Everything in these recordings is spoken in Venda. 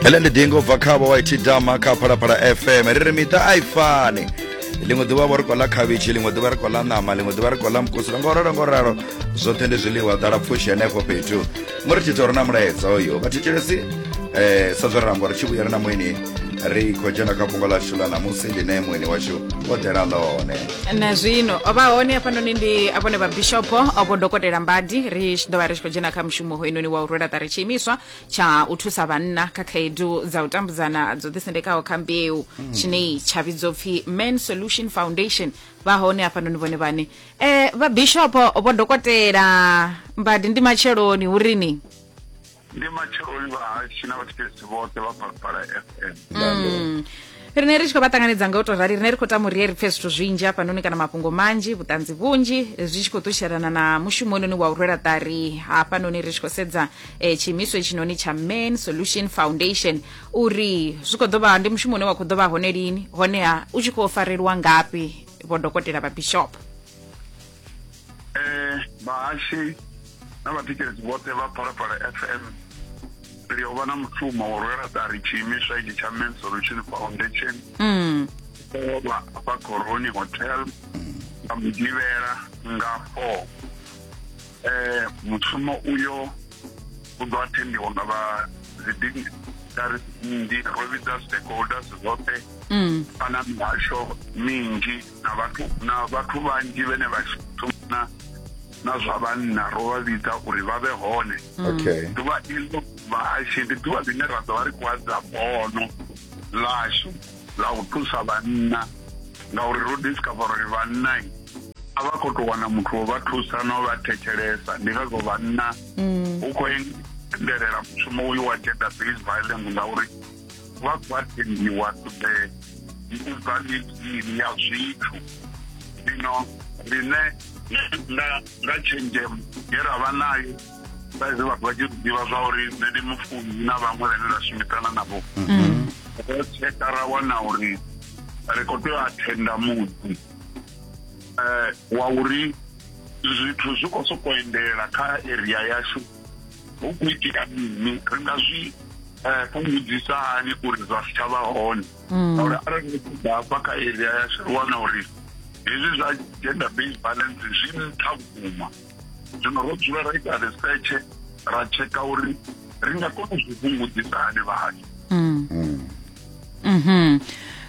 hele ndi dingo bva khavho wa iti dama kha phalaphala fm ri ri miṱa a i fani ḽiṅwe ḓuvha vho ri kola khavhishi ḽiṅwe ḓuvha ri kola ṋama ḽiṅwe ḓuvha ri kola mukusula ngo ralo ngo ralo zwoṱhe ndi zwiḽiwa ḓala pfushi henefho fhethu mo ri tshi tou ri na mulaedza uyo vhathetshelesi um sa zwo ri amba uri tshi vhuyela na muini ri khou dzhena kha fhungo ḽashu ḽa ṋamusi ḽine muini washu o ḓela ḽone na zwino vha hone hafhanoni ndi vhone vha bishopo vho dokotela mbadi ri tshi ḓo vha ri tshi khou dzhena kha mushumo mushumo hoyunoni wa u rwela ṱari tshiimiswa tsha u thusa vhanna kha khaedu dza u tambudzana dzo ḓisendekaho kha mbeu tshine tsha vhidzwa upfi man solution foundation vha hone hafhanoni vhone vhane eh vha bishopo vho dokotela mbadi ndi matsheloni hu ri ni ndi matsheloni vhahashi na vhathetshelesi vhoṱhe vha phalaphala fm Mm. rine ri tshi khou vha ṱanganedza nga u tou rali rine ri khou tama uri ri pfhe zwithu zwinzhi hafhanoni kana mafhungo manzhi vhuṱanzi vhunzhi zwi tshi khou ṱushelana na mushumo ononi wa u rwela ṱari hafhanoni ri tshi khou sedza eh, tshiimiswa itshinoni tsha man solution foundation uri zwi khou ḓo vha ndi mushumo une wa khou ḓo vha hone lini honeha u tshi khou farelwa ngafhi vhodokotela vha bishop eh vhahashi na vhatikedzi vhoṱhe vha phalaphala fm ri yo vha na mushumo wo rwela ṱari tshiimiswa itshi tsha men solution foundation mm. vha vha coroni hotel nga mugivhela nga four eh mushumo uyo u ḓo athendiwa nga vha dzidini dari ndi ro vhidza stakeholders zwoṱhe mm. kana mihasho minzhi na vhathu na vhathu vhanzhi vhene vha shumana na zwa vhanna ro vha vhidza uri vha vhe hone okay ḓuvha iḽo vhahashe ndi ḓuvha ḽine ra ḓo vha ri khou adza bono ḽashu ḽa u thusa vhanna ngauri ro discover uri vhanna a vha khou tou wana muthu wo vha thusa no vha thetshelesa ndi ngazwo vhanna hu khou endelela mushumo uyu wa gender based violence ngauri wa gwademiwa ṱoḓe ndi u bva mitshini ya zwithu zwino rine nga tshenzhemo ye ra vha nayo saizwi vhathu vha tshi ḓivha zwa uri nṋe ndi mufuni na vhaṅwe vhane ra shumisana navho mm. ro tsheka ra wana uri ri khou tea u athenda muḓi um wa uri zwithu zwi khou sokou endela kha area yashu hu khou itea mini ri nga zwi eh, fhungudzisa hani uri zwa si tshavha hone mm. ngauri arali ni ṱoḓa hafha kha area ya ri wana uri hezwi zwa gender based violence zwi nṱha vhukuma zwino ro dzula ra ita research ra tsheka uri ri nga kona u zwi fhungudzisa hani vhathu mm. mm. mhm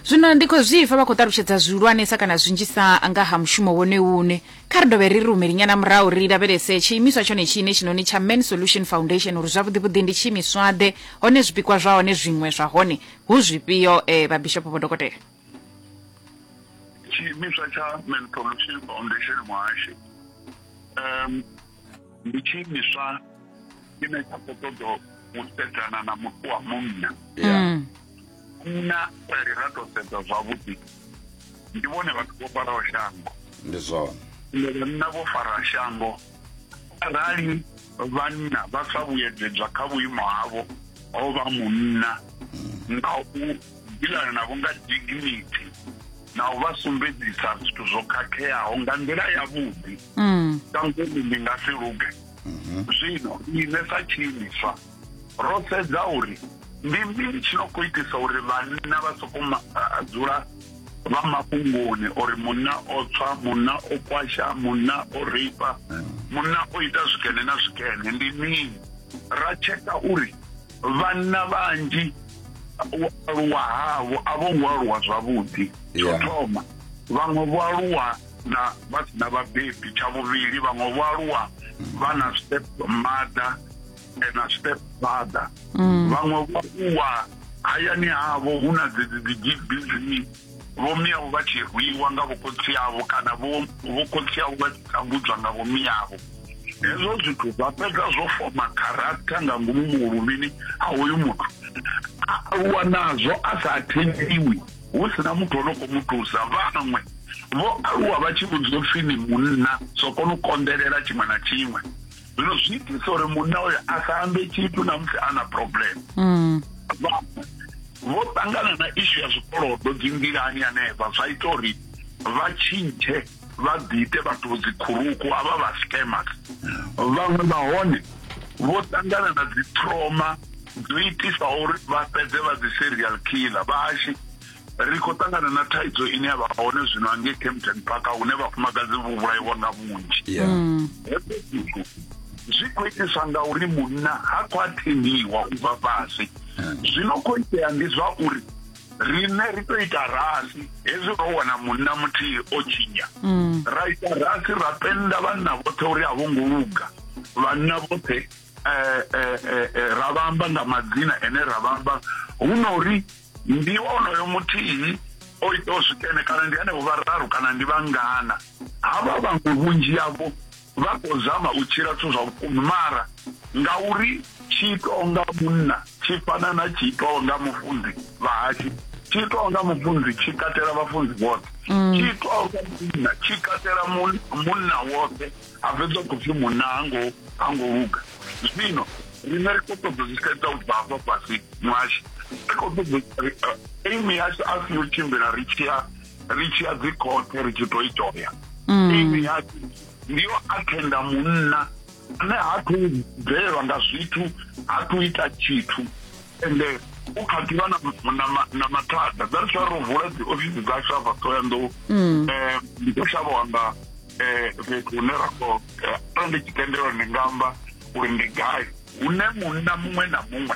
zwino ndi khou zwipfa vha khou ṱalutshedza zwihulwanesa kana zwinzhisa nga ha mushumo wone une kha ri dovhe ri ri humeli nyana murahu ri lavhelese tshiimiswa tshone tshine tshinoni tsha man solution foundation uri zwavhuḓivhuḓi ndi tshiimiswaḓe hone zwipikwa zwa hone zwiṅwe zwa hone hu zwifhio um eh, vhabishopo vho dokotela tshiimiswa tsha man solution foundation muhashi um ndi tshiimiswa tshine tsha khou ṱoḓa u sedzana na muthu wa munna ya Mm. munna arali ra tou sedza zwavhuḓi ndi vhone vhathu vho faraho shango ndi zwone ende vhanna vho fara shango arali vhanna vha sa vhuyedzedzwa kha vhuimo havho ho vha munna nga u dilana navho nga dignity na u vha sumbedzisa zwithu zwo khakheaho nga nḓila yavhuḓi mm. ka ngomu ndi nga si luge mhm. zwino ine sa tshiimiswa ro sedza uri ndi mini tshi no khou itisa uri vhanna vha soko dzula vha mafhungoni uri munna o tswa munna o kwasha munna o reipa mm. munna o ita zwikene na zwikene ndi mini ra tsheka uri vhanna vhanzhi u aluwa havho a vho ngo aluwa zwavhuḓi tsho thoma vhaṅwe vho aluwa na vha si na vhabebi tsha vhuvhili vhaṅwe vho aluwa vha na step mother na step father mm. vhaṅwe vho aluwa hayani havho hu na dzedzi dzi gbg vhomiyavho vha tshi rwiwa nga vhokhotsi avho kana vhokhotsi avho vha tshi tambudzwa nga vhomiyavho hezwo zwithu zwa fhedza zwo foma character nga ngomu muhulumini ha hoyu muthu a aluwa nazwo a sa athendiwi hu si na muthu o no khou mu thusa vhaṅwe vho aluwa vha tshi vhudzwa upfi ni munna so kona u konḓelela tshiṅwe na tshiṅwe zwino zwi itisa uri munna uyo a sa ambe tshithu na musi a na problem mm. vho ṱangana na ishu ya zwikolodo dzi nḓilani hanefha zwa ita uri vha tshintshe vha ḓiite vhathu dzikhuruku a vha vha scammers vhaṅwe vha hone vho ṱangana na dzi trauma dzo itisa uri vha fhedze vha dzi serial killer vhahashi ri khou ṱangana na thaidzo ine ya vha hone zwino angei campton park hune vhafumakadzi vho vhulaiwa nga vhunzhi mm. zwi khou itiswa nga uri munna ha khou athendiwa u bva fhasi mm. zwino khou itea ndi zwa uri riṋe ri to ita rasi hezwi ro wana munna muthihi o tshinya mm. ra ita rasi ra penda vhanna vhoṱhe uri a vho ngo luga vhanna vhoṱhe eh, eh, eh, ra vhamba nga madzina ene ra vhamba hu na uri ndi onoyo muthihi o itaho zwikene kana ndi henevho vhararu kana ndi vhangana havha vhaṅwe vhunzhi yavho vha khou zama u tshila zwithu zwa vhukuma mara ngauri tshi itaho nga munna tshi fana na tshi itaho nga mufunzi vhahashu tshi itaho nga mufunzi tshi katela vhafunzi vhoṱhe mm. tshi itaho nga munna tshi katela munna woṱhe a fhedza khou pfhi munna hango hango luga zwino rine ri khou ṱoḓa zwi sedza u bva hafha fhasi mwashu ri khou ṱoḓa aimi yashu a si yo tshimbila ri tshi ya ri tshi ya dzi khothe ri tshi to i toya imi mm. yake ndi yo athenda munna ane ha thu bvelelwa nga zwithu ha thu ita tshithu ende u kha ḓivha na mathada dza ri ro vula dzi ofisi dza shava thoyandou um eh, ndi ḓo shavha wanga Eh, fhethu hune ra khou eh, arali ndi tshi tendelwa ndi nga amba uri ndi gai hune munna muṅwe na muṅwe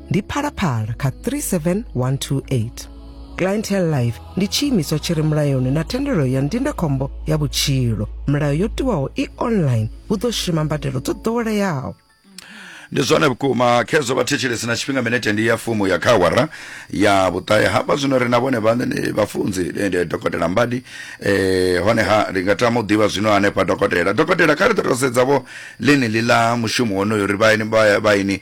ndi phalaphala kha 37128 clientele life ndi tshiimiswa tshi re mulayoni na thendelo ya ndindakhombo ya vhutshilo milayo yo tiwaho i online hu ḓo shuma mbadelo dzo ḓoweleaho ndi zwone vhukuma khezwo vhathetshelesi na tshifhinga minete ndi ya fumu ya khawara ya vhuṱahe hafha zwino ri na vhone vhaṋe ni vhafunzi eh, ndi dokotela mbadi eh, honeha ndi nga tama u ḓivha zwino hanefha dokotela dokotela kha ri ḓo tou sedza vho ḽeneli ḽa mushumo wonoyo ri vhaini vha- vhaini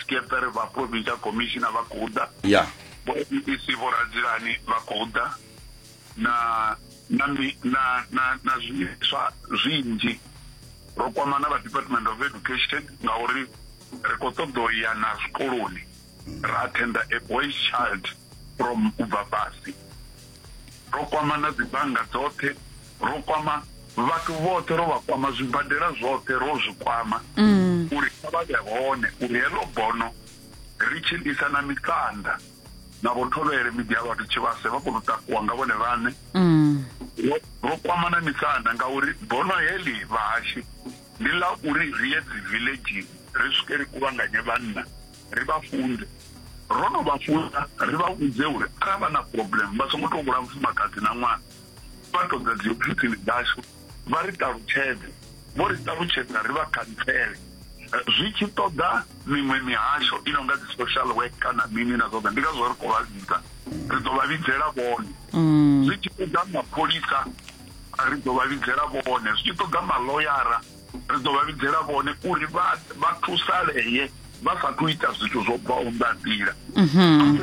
Scheffer vha provincial commissioner vha khou ḓa ya vho bbc vho radzilani vha khou ḓa na na mi- na na na zwiimiswa zwinzhi ro kwama na vha department of education ngauri ri khou ṱoḓa u ya na zwikoloni ra attenda a boy child from u bva fhasi ro kwama na dzibannga dzoṱhe ro kwama vhathu vhoṱhe ro vha kwama zwibadela zwoṱhe ro zwi kwama mm. uri kha vha vhe hone uri heḽo bono ri tshi ḽisa na mikanda na vho thovhele miḓi ya vhathu tshivhase vha kona u takuwa nga vhone vhaṋe mm. ro kwama na mikanda ngauri bono heḽi vhahashi ndi ḽa uri ri ye dzi villagini ri swike ri kuvhanganye vhanna ri vha funde ro no vha funa ri vha vhudze uri arali vha na problem vha songo tou vhula mufumakadzi na ṅwana phato dza dziofisini dzashu vha ri ṱalutshedze vho ri ṱalutshedza ri vha khantsele zwi tshi ṱoḓa miṅwe mihasho i no nga dzi social work kana mini na zwoṱhe ndi ngazwo ri khou vha vhidza ri ḓo vha vhidzela vhone mm. zwi tshi ṱoḓa mapholisa ri ḓo vha vhidzela vhone zwi tshi ṱoḓa maloyara ri ḓo vha vhidzela vhone uri vha thusalee vha sa thu ita zwithu zwo bvaho nga nḓila mhm.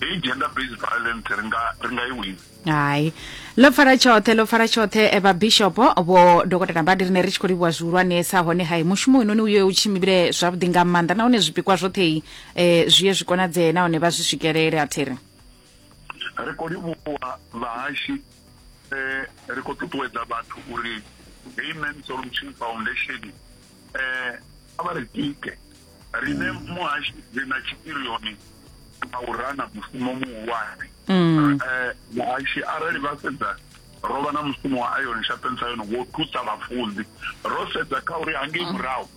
heyi gender based violence ri nga ri nga i wina hai ḽo pfala tshoṱhe ḽo pfala tshoṱhe eh, vhabishopo vho dokotela mbadi rine ri tshi khou livhuwa zwihulwanesa hone hai mushumo inoni uye u tshimbile zwavhuḓi nga maanḓa nahone zwipikwa zwoṱhe um eh, zwi ye zwi konadzee nahone vha zwi swikelele a thiri ri khou livhuwa vhahashi um ri khou ṱuṱuwedza vhathu uri heyi man solution foundation um a vha ri tike riṋe muhashi ri na tshipirioni a u rana mushumo muhulwane um muhashi arali vha sedza ro vha na mushumo wa iron sharpens iron wo thusa vhafunzi ro sedza kha uri hangei murahu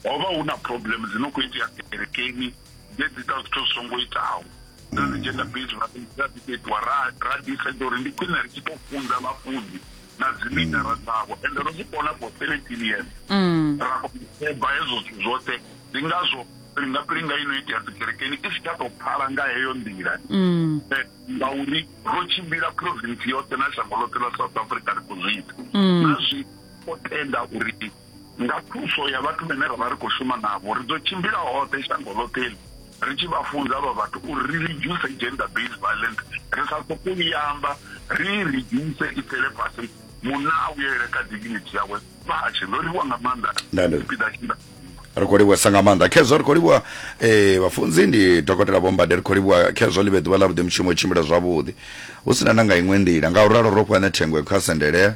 ho vha hu na problem dzi no khou itea kerekeni dze dzi ta zwithu zwi songo itaho na dzi gender based ra ḓi itiwa ra ra ḓi sedza uri ndi khwine ri tshi tou funza vhafunzi na dzimithara mm. dzavho ende ro zwi kona for seventeen years mm. ra koba hezwo zwithu zwoṱhe ndi ngazwo pilinga pilinga ino itea dzikerekeni i si tsha tou pfala nga heyo nḓila mm. eh, ngauri ro tshimbila province yoṱhe na shango ḽoṱhe ḽa south africa ri khou zwi ita na zwi o tenda uri Nga thuso ya vhathu vhene ra vha ri khou shuma navho, ri ḓo tshimbila hoṱhe shango ḽoṱhe iḽi ri tshi vha funza avha vhathu uri ri ridzhuse gender based violence, ri sa sokou i amba, ri i ridzhuse i tsele fhasi, munna a vhuyelele kha dignity yawe. Vha a tshi ndo livhuwa nga maanḓa tshipiḓa tshe nda ri khou livhuwesa nga maanḓa khezwo ri khou livhuwa eh, vhafunzi ndi dokotela vhombade ri khou livhuwa khezwo ḽi vhe ḓuvha ḽa vhuḓi mushumo u tshimbila zwavhuḓi hu si na na nga iṅwe nḓila nga u ralo ro fhane thengwe kha sendelea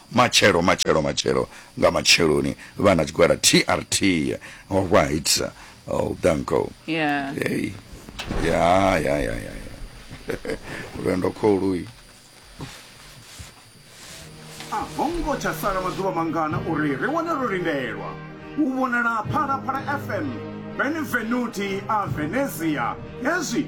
Matshelo, matshelo, matshelo nga matsheloni vha na tshigwada TRT. All right. Oh, danko. Yeah. Hey. Ya, ya, ya, ya, ya. Lwendo kholuyi. A ho ngo tsha sala maḓuvha mangana uri ri wane ro lindelwa u vhonala Phalaphala FM, Benvenuti a Venezia. Hezwi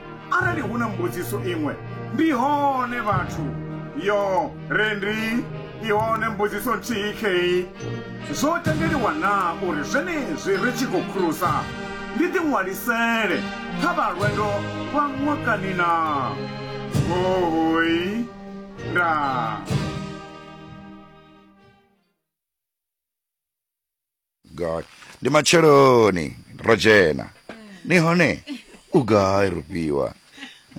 Arali hu na mbudziso iṅwe, ndi hone vhathu. Yo, re ndi i hone mbudziso nthihi khei. Zwo tendeliwa na uri zwenezwi ri tshi khou khurusa ndi ḓiṅwalisele kha vha lwendo lwa ṅwakani na? Hohoi. Ndaa. god ndi matsheloni ro dzhena ni hone u gai rufhiwa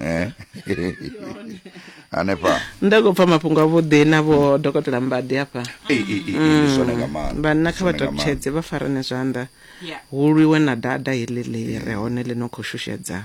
Eh? hanefha nda khou pfa mafhungo avhuḓi na vho dokotela mbadi hafha Ei, ei, ei, ei, ndi zwone nga maanḓa. vhanna kha Zwone nga maanḓa. vhatokutshedze vha farane zwanḓa Yeah. hu lwiwe na dada heḽi ḽi re hone ḽi no khou shushedza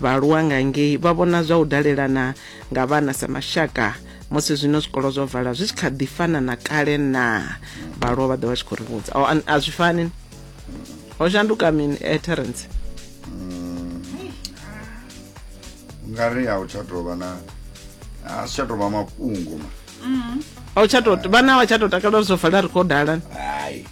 Vhaaluwa nga ngei vha vhona zwa u dalelana nga vhana sa mashaka. Musi zwino zwikolo zwo vala zwi tshi kha ḓi fana na kale na vhaaluwa vha ḓo vha tshi khou ri vhudza oh, a zwi fani ho shanduka mini eh, terence mm. ngari a u tsha tou vha na a si tsha tou vha mafhungo ma mm. a u tsha tou vhana a tsha tou takala zwo vala ri khou dala hai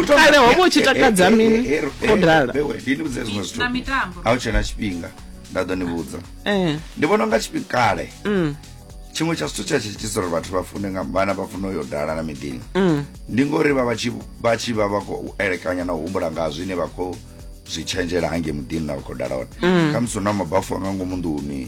Kale ho vha u tshi takadza mini? Ho dala. ndini vhudze zwiṅwe zwithu na mitambo a u tshena tshifhinga nda ḓo ni vhudza Eh. ndi vhona unga tshifhinga kale Mm. tshiṅwe tsha zwithu tsha tshi itisa uri vhathu vha fune nga vhana vha fune uyo dala na miḓini Mm. ndi ngori vha vha tshi vha tshi vha vha khou elekanya na u humbula nga zwine vha khou zwi tshenzhela hange muḓini na vha khou dala hone khamusi hu na mabafu a nga ngomu nḓuni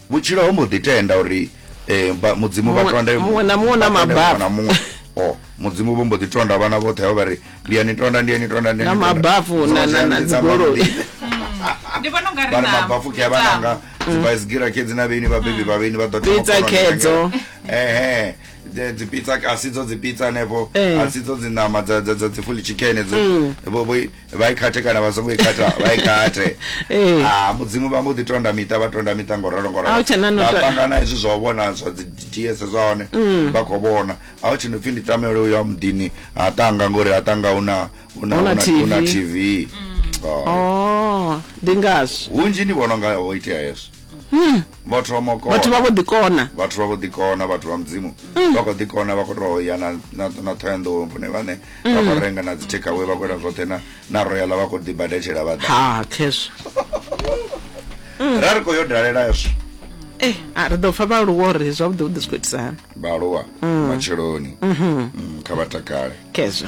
Vhutshilo ho mbo ḓi tenda uri um mudzimu vha tonde muṅwe na muṅwe na mababa na muṅwe o oh, mudzimu vho mbo ḓi tonda vhana vhoṱhe vha vha ri ndi ya ni tonda ndi ya ni tonda na mabafu na dzigoloi ndi vhona u nga ri na mabafu ke vha nanga dzibaisigira mm. khedzi na vheni vhabebi vha vheni vha ḓo pizza khedzo ehe dzi pizza a si dzo dzi pizza hanefho eh. a si dzo dzi ṋama dza dza dzi fully chicken dzo mm. vha i khathe kana vha songo i khatha vha i khathe Ee. Ah, mudzimu vha mbo ḓi tonda miṱa vha tonda miṱa ngo ralo ngo A hu tshena no ralo to- ṱangana hezwi zwa u vhona zwa dzi ds zwa hone Mm. vha khou vhona a hu tshino pfhi ndi tamele uyo wa muḓini ha tanga ngori ha tanga hu na hu na- Hu na hu na- hu na TV. tv Oh. oh ndi ngazwo hunzhi ndi vhona unga ho itea hezwo hmm. vhathu vha makona vhathu vha vho ḓikona vhathu vha vho ḓikona vhathu vha mudzimu hmm. vha khou ḓikona vha khou tou ya na thoyanḓou vhone vhane vha khou renga na dzi takeaway vha khou ita zwoṱhe na royala vha khou ḓibadetshela vha ḓa ha khezwo ra ri khou yo dalela hezwo eh a ri ḓo pfa vhaaluwa uri zwavhuḓi vhuḓi zwi khou itisana vhaaluwa mm. matsheloni mm-hmm. mm, kha vha takale khezwo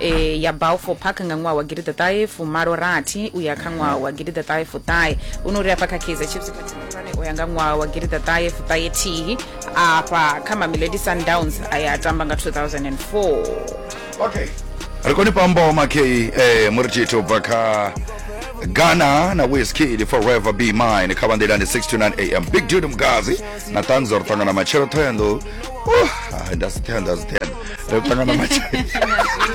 e, ya balfour park nga ṅwaha wa gidida ṱahe fumalo rathi u ya kha ṅwaha wa gidida ṱahe fuṱahe u no ri afha kha kaizer chiefs khathihi khulwane u ya nga ṅwaha wa gidida ṱahe fuṱahe thihi afha kha mamelodi sundowns a ya a tamba nga 2004 okay ri koni pambo makei eh, muri tshithu u bva kha ghana na wizkid forever be mine kha vanḓilani 6 to 9 am big dude mgazi na tanzo ri ṱangana matshelo thoyando uh, nda si thoyando a si thoyando ri ṱangana matshelo